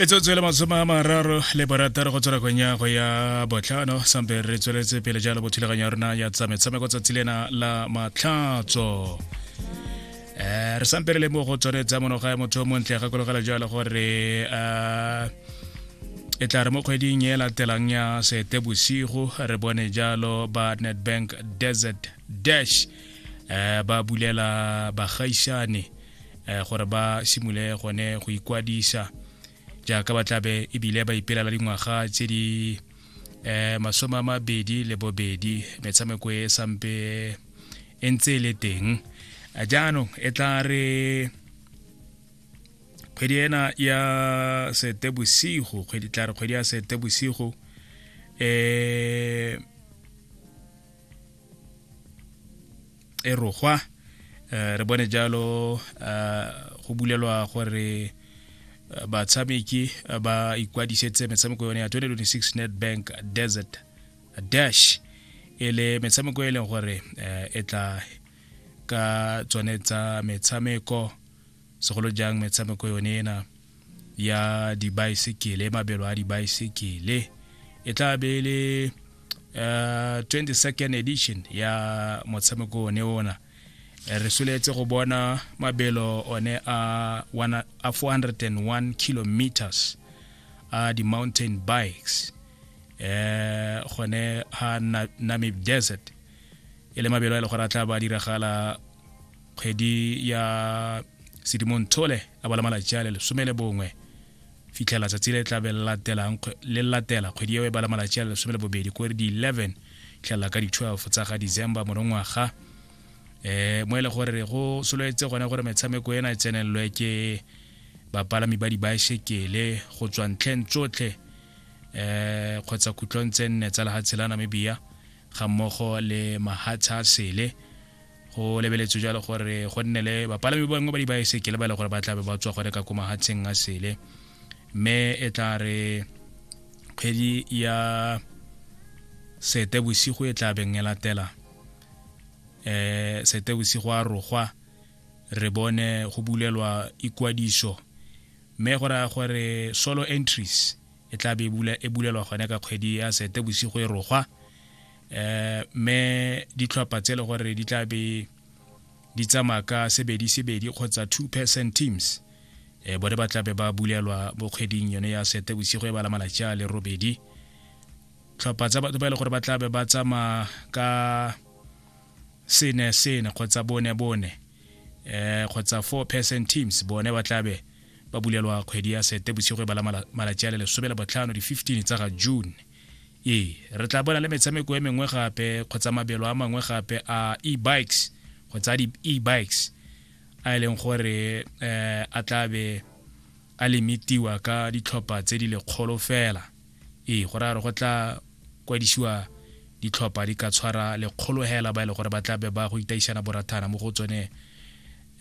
e tswetswe le masome a mararo le borataro go tswela kwenya go ya botlhano sampe re tsweletse pele jalo bothulaganyo ya rona ya tsa metshameko tsatsi lena la matlhatso um re sampe re le mo go tswanetsa monoga ya motho o montle gakologela jalo gore um e tla re mo kgweding e latelang ya sete bosigo re bone jalo ba netbank desert dash um ba bulela bagaisane eh, gore ba simole gone go ikwadisa jaaka ba tlabe ebile ba ipelela dingwaga tse di eh masome a mabedi le bobedi metshameko e sampe e ntse e le teng eh, jaanong e tla re kgwedi ena ya setebosigo kgwedi tla re kgwedi ya setebosigo um eh, e rogwa eh, re bone jalo eh, go bulelwa gore eh, batshameki ba ikwadisetse metshameko yone ya 2026 netbank desert dash e le metshameko e leng gore e tla ka tsone tsa metshameko segolo jang metshameko yone ena ya dibaesekele mabelo a dibaesekele e tla be e le uh, 22nd edition ya motshameko one ona re soletse go bona mabelo one a 401 kilometers a di-mountain bikes eh gone ha namib desert e le mabelo a e le gore a tla ba diragala kgwedi ya sedimontshole a bala malatsi a le lesome le bongwe fitlhela tsatsi le tlabe le latela kgwedi eo e bala malatsi a le lesome le bobedi ko re di-11 fitlhelela ka di-12 tsa ga december morongwaga eh mo e le gore go sololetse gone gore metshameko ena e tsenelelwe ke bapalami ba dibaesekele go tswa ntlheng tsotlhe eh kgotsa khutlong tse nne tsa lehatshe la namibia ga mmogo le mahatsha a sele go lebeletswe jalo gore go nne le bapalami bangwe ba dibaesekele ba e le gore ba tlabe ba tswa gone ka ko mahatsheng a sele mme e tla re kgwedi ya sete bosigo e tla beng e latela um sete bosigo a rogwa re bone go bulelwa ikwadiso mme go raya gore solo entries e tla be e, e bulelwa gone ka kgwedi ya sete bosigo e rogwa eh me ditlhopha tse le gore di tla be di tsamaya ka sebedi sebedi kgotsa two person teams eh bone ba tla be ba bulelwa mo kgweding yone ya sete bosigo e bala malatsi a le robedi tlhopha tsa batho ba e le gore ba tla be ba tsamaya ka sene sene kgotsa bone bone eh kgotsa four person teams bone ba tla be ba bulelwa kgwedi ya sete bosigo e bala malatsi a le lesome le botlhano di-15 tsa ga june Ee, re tla bona le metshameko e mengwe gape kgotsa mabelo a mangwe gape a e-bikes kgotsa a di-e-bikes a e leng gore um a tlabe a limitiwa ka ditlhopha tse di lekgolo fela ee go raya gore go tla kwadisiwa ditlhopha di ka tshwara lekgolo hela ba e le gore ba tlabe ba go itaisana borathana mo go tsone um